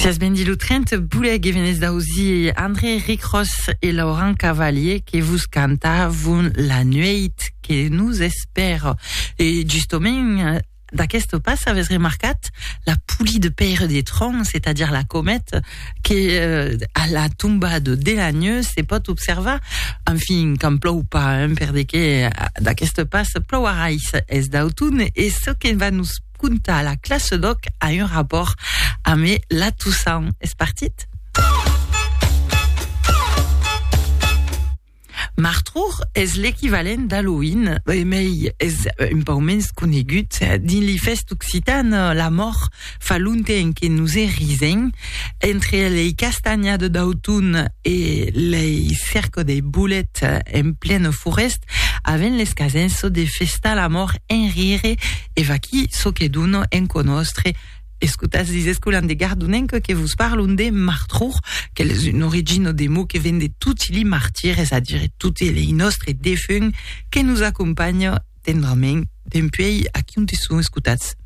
Sias ben dit lo 30 boulè que venez d'ausir André Ricros et Laurent Cavalier que vos cantavon la nueit que nous espère. Et justement, d'aquest pas avez remarcat la pouli de Père des Troncs, c'est-à-dire la comète, que euh, à la tombade de la nuit se pot observar. Enfin, quand plou pas, hein, per de que d'aquest pas plouarà es d'automne et ce que va nous contar la classe d'òc a un rapòrt ame la Toussaint. Es partit? Martrour es l'equivalent d'Halloween, e mei es un pau mens conegut. Dins li fèst occitan, la mòr fa lonten que nos e risen. Entre lei castanha de d'auton e lei cerco de bolet en plena forèst, aven les casens çò de festar la mòr en rire, e vaquí çò que dona en conòstre Escotas dis escolan de Gardonenc que vos parlon de martror, qu'el es un origina de mot que ven de toti li martiri, es a dire toti lei nòstre defunt que nos acompanha tendrament dempuèi aquí onti son escotats.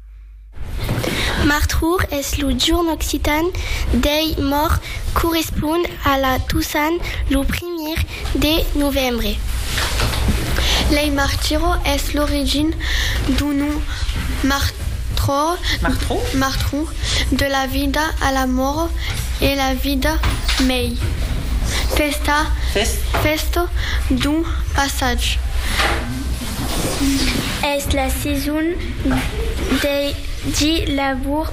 Martror es lo jorn occitan dei mòrts, correspond a la Tosan, lo primièr de novembre. Lei Martiro es l'origin d'un nom martro de la vida a la mòrt e la vida mei pesta fèsta d'un passatge. Es la seson dei di labour.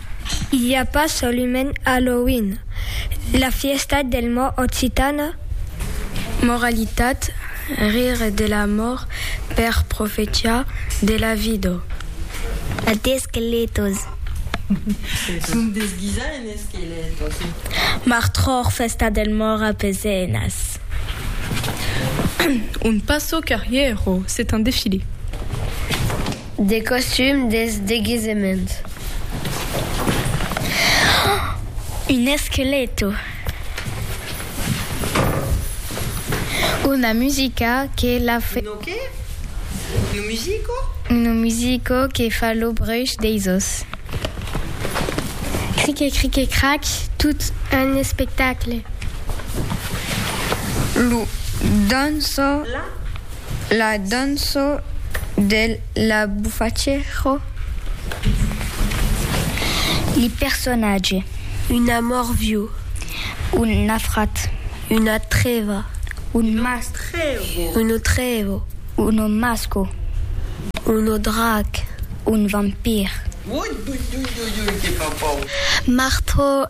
I a pas solumènt Halloween, la fièsta del mòrt occitana? Moralitat, rire de la mòrt per profetiar de la vida. A d'esqueletos. Son desguisats en esqueletos. Martròr, fèsta del mòrt a Pezenas. Un passo carrièro, c'est un défilé. Des costums, des deguisements. Un esqueleto. Una musica que la fe. Una qué? Un musico? Un musico que fa lo bruch deis os. Crique crique crac, tot un espectacle. Lo dançor. La. La danço de la bufaccero. Li personatge. Un amor viu. Un nafrat. Una treva. Un masco. Uno trevo. Uno masco. Uno drac. Un vampir. Marto.